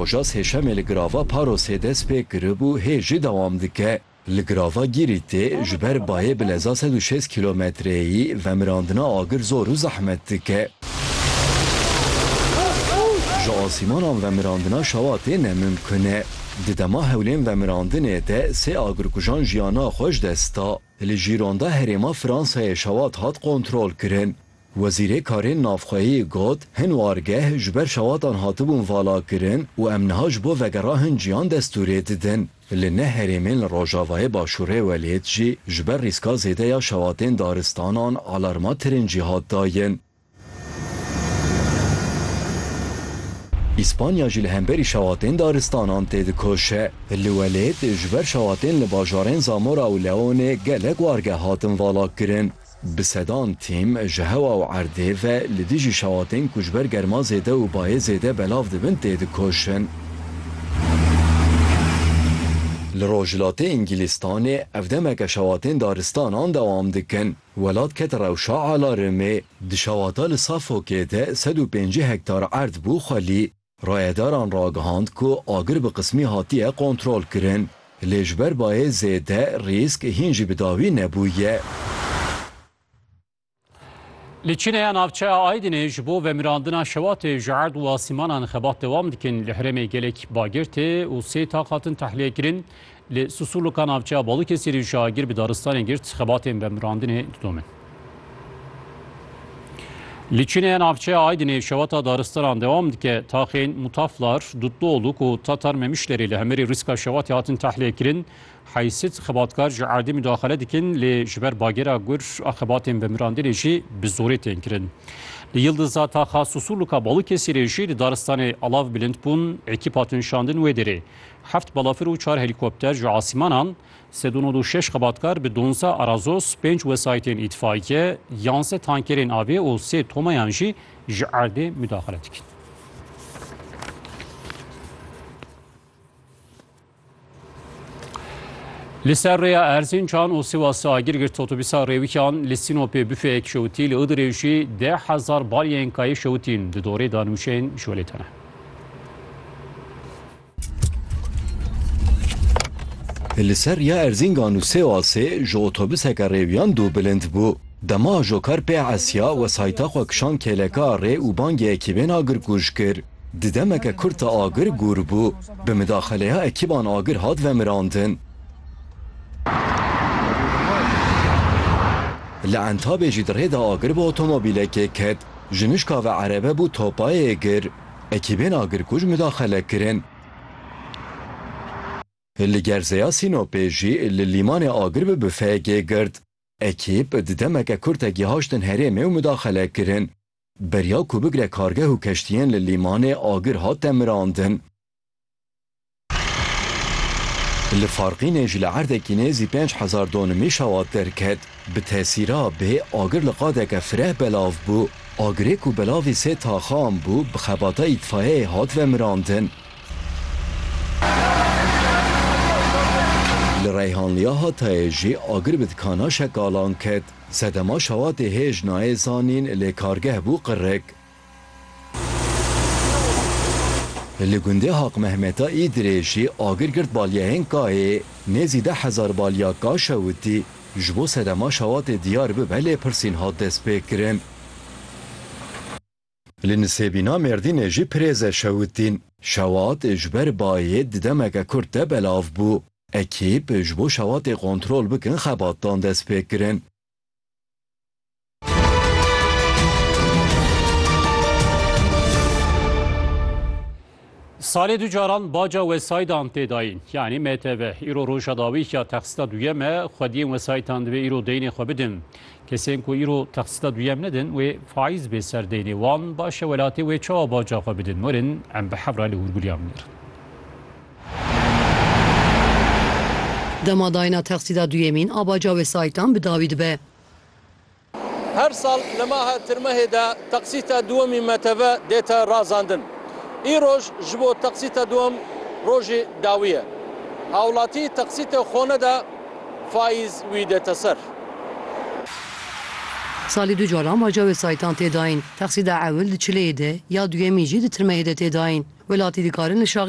Hoca sêşemê li Girava Parosê dest pê kiribû hê jî dewam dike. Li Girava Gîrîtê ji ber bayê bi leza sed û şêst kîlometreyî vemirandina agir zor û zehmet dike. Ji asîmanan vemirandina şewatê ne mimkun e. Di dema hewlên vemirandinê de sê agirkujan jiyana xwe ji dest da. Li Jîronda herêma Fransayê şewat hat kontrolkirin. Wezîrê Karên Navxweyî got, Hin wargeh ji ber şewatan hatibûn valakirin û em niha ji bo vegera hin ciyan destûrê didin. Li neh herêmên li rojavayê başûrê welêt jî ji ber rîska zêde ya şewatên daristanan alarma tirincî hat dayin. Îspanya jî li hemberî şewatên daristanan têdikoşe. Li welêt ji ber şewatên li bajarên Zamora û Leonê gelek wargeh hatin valakirin. Bi sedan tîm ji hewa û erdê ve li dijî şewatên ku ji ber germa zêde û bayê zêde belav dibin tê dikoşin. Li rojhilatê Îngilîztanê ev demeke şewatên daristanan dewam dikin. Welat ket rewşa alarmê. Di şewata li Suffolkê de sed û pêncî hektar erd bû xwelî. Rayedaran ragihand ku agir bi qismî hatiye kontrolkirin, lê ji ber bayê zêde rîsk hîn jî bi dawî nebûye. Li Çînê ya navçeya Aydinê ji bo vemirandina şewatê ji erd û asîmanan xebat dewam dikin. Li herêmê gelek bagir tê û sê taq hatin tehliyekirîn. Li Susurluka navçeya Balûkesirê şagir bi daristanê girt, xebatên vemirandinê didomin. Li Çinê navçeya Aydinê şewata daristanan dewam dike. Taxên Mutaflar, Dutluoluk û Tatar Memişlerê li hemirê rîska şewatê hatin tahliyekirîn. Heysit xebatkar ji erdê mudaxele dikin lê ji ber bagera gur a xebatên vemirandinê jî bi zorê tên kirin. Li Yildiza taxa Susurluka Balûkesirê jî di daristanê alav bilind bûn, ekîp hatin şandin wê derê. Heft balafir û çar helîkopter ji asîmanan, sed û nod û şeş xebatkar bi donzdeh Arazos, pênc wesayîtên îtfaîke, yansê tankerên avê û sê tomayan jî ji erdê mudaxile dikin. Li ser rêya Erzîncan û Sîwasê agir girt otobîsa rêwikan li Sînopê bifeyek şewitî li Idirê jî deh hezar balyayên kayê şewitîn di dorê danûşên ji welêtene. Li ser riya Erzîngan û Sêwasê ji otobuseke rêwiyan dû bilind bû. Dema ajokar pê esiya wesayîta xwe kişand kêleka rê û bangê ekîbên agirkuj kir. Di demeke kurt de agir gûr bû. Bi midaxeleya ekîban agir hat vemirandin. Li Entabê jî di rê de agir bi otomobîlekê ket. Ji nişka ve erebe bû topayê gir. Ekîbên agirkuj midaxele kirin. Li gerzeya Sînopê jî li lîmanê agir bi bifeyekê girt. Ekîb di demeke kurte gihaştin herêmê û midaxele kirin. Beriya ku bigre kargeh û keştiyên li lîmanê agir hat temirandin. Li Farqînê ji li erdekî nêzî pênc hezar donimî şewat derket. Bi tesîra bê agir li qadeke fireh belav bû. Agirê ku belavî sê taxan bû bi xebata îtfayeyê hat vemirandin. Li Reyhanliya Hatayê jî agir bi dikana şekalan ket. Sedema şewatê hêj nayê zanîn lê kargeh bû qirrik. Li gundê Haqmehmeta Îdirê jî agir girt balyayên Kayê, nêzî deh hezar balya Ka şewitî ji bo sedema şewatê diyar bibe lêpirsîn hat destpêkirin. Li Nisêbîna Mêrdînê jî pirêze şewitîn. Şewat ji ber bayê di demeke kurt de belav bû. Ekîp ji bo şewatê kontrol bikin xebatdan destpêkirin. Salê du caran baca wesaydan tê dayîn yanî MTV îro roja dawîya texsîta duyem e xwediyên wesaytan divê îro deynê xwe bidin. Kesên ku îro texsîta duyem nedin wê faîz bê ser deynê wan baş e welatê wê çawa baca xwe bidin werin em bi hevra li hûrgulîyan bînin. Dema dayîna texsîda duyemîn a baca wesayîtan bi dawî dibe. Her sal li maha Tirmehê de texsîta duwemîn meteve dête razandin. Îroj ji bo texsîta duwem rojê dawî ye. Hawlatî texsîtê xwe neda fayîz wî dête ser. Salî du caran baca wesayîtan tê dayîn. Texsîda ewil di Çileyê de ya duyemîn jî di Tirmehê de tê dayîn. Welatî dikarin li şaxên